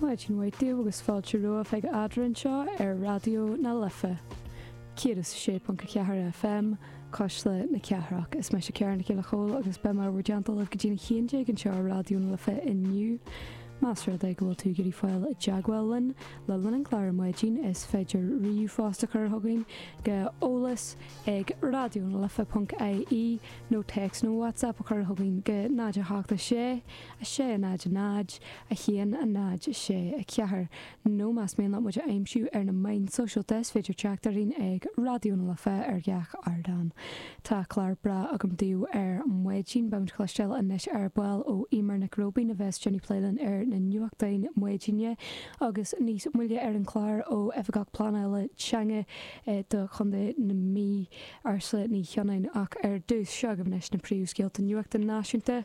Maidin mhaith daoibh agus fáilte romhaibh ag Eadra anseo ar Raidió na Life 106.4 FM, Cuisle na Cathrach. Is mise Ciara Nic Giolla Chomhaill agus beidh mé bhur dteannta libh go dtí a haon déag anseo ar Raidió na Life inniu. Más rud é go bhfuil tú ag iarraidh fáil i dteagmháil linn le linn an chláir ar maidin, is féidir ríomhphost a chur chugainn go eolas ag raidionalife.ie nó téacs nó WhatsApp a chur chugainn go 0 7 6 6, 0, 0, 1, 0, 6, 4, nó más mian leat muid a aimsiú ar na meáin sóisialta is féidir teacht orainn ag Raidió na Life ar gach ardán. Tá clár breá agam daoibh ar maidin beidh muid ag cloisteáil anois ar ball ó Emer Nic Róibín a bheas ag déanamh plé linn ar na nuachtáin maidine agus níos moille ar an clár ó Oifigeach Pleanála Teanga do Chontae na Mí, Ursula Ní Shionnain. Ach ar dtús, seo agaibh anois na príomhscéalta nuachta náisiúnta.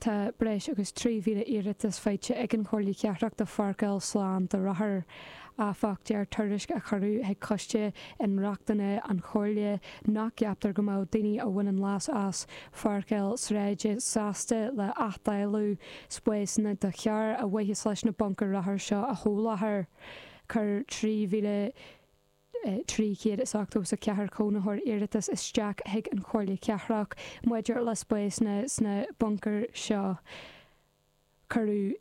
Tá breis agus 3,000 iarratas faighte ag an Chomhairle Chathrach do pháirceáil slán do rothair, áfach, deir tuairisc a cuireadh chuig Coiste Inrochtana an Chomhairle nach gceaptar go mbeadh daoine a bhaineann leas as pháirceáil sráide sásta le athdháileadh spásanna do charr ar mhaithe leis na buncair rothar seo a sholáthar. Chuir 3,000. 384 cónaitheoir iarratas isteach chuig an Chomhairle Cathrach maidir le spásanna sna buncair seo. Cuireadh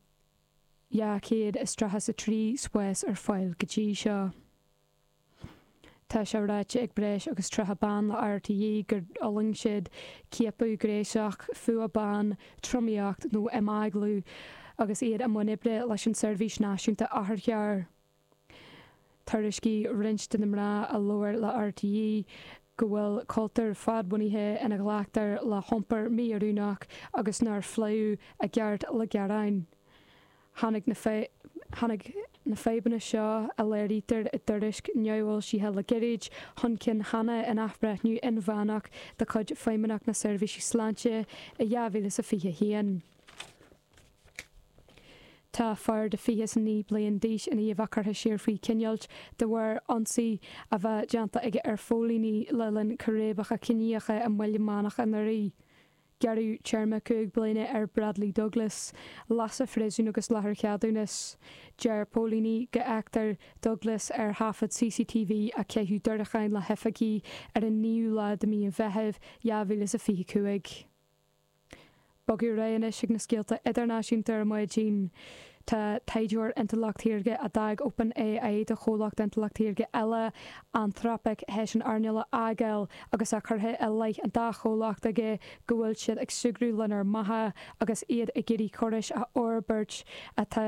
233 spás ar fáil go dtí seo. Tá sé ráite ag breis agus 30 bean le RTÉ gur fhulaing siad ciapadh gnéasach, fuath ban, tromaíocht nó imeaglú agus iad i mbun oibre leis an tSeirbhís Náisiúnta Otharcharr. Thuairiscigh roinnt de na mná a labhair le RTÉ go bhfuil cultúr fadbhunaithe ina nglactar le hiompar mí-oiriúnach agus nár phléadh i gceart le gearáin. Tháinig na tháinig na fadhbanna seo a léirítear i dtuairisc neamhfhoilsithe le gairid chun cinn cheana in athbhreithniú inmheánach de chuid Feidhmeannacht na Seirbhísí Sláinte i 2021. Tá fear de 29 bliain d'aois i ndiaidh a bheith curtha siar faoi choinneáilt de bharr ionsaí a bheith déanta aige ar phóilíní le linn círéibeacha ciníocha i mBaile Meánach anuraidh. Gearradh téarma cúig bliana ar Bradley Douglas, leath sa phríosún agus leath ar ceadúnas. Deir póilíní go bhfeictear Douglas ar thaifead CCTV ag caitheamh diúracáin le hoifigigh ar an naoú lá de mhí an Mheithimh 2025. Bogfaidh muid anois ag na scéalta idirnáisiúnta ar maidin. Tá taighdeoir intleacht shaorga, a d'fhág OpenAI do chomhlacht intleacht shaorga eile, Anthropic, théis an earnáil a fhágáil agus tá curtha i leith an dá chomhlacht aige go bhfuil siad ag súgradh lenár mbeatha agus iad ag iarraidh córais a fhorbairt atá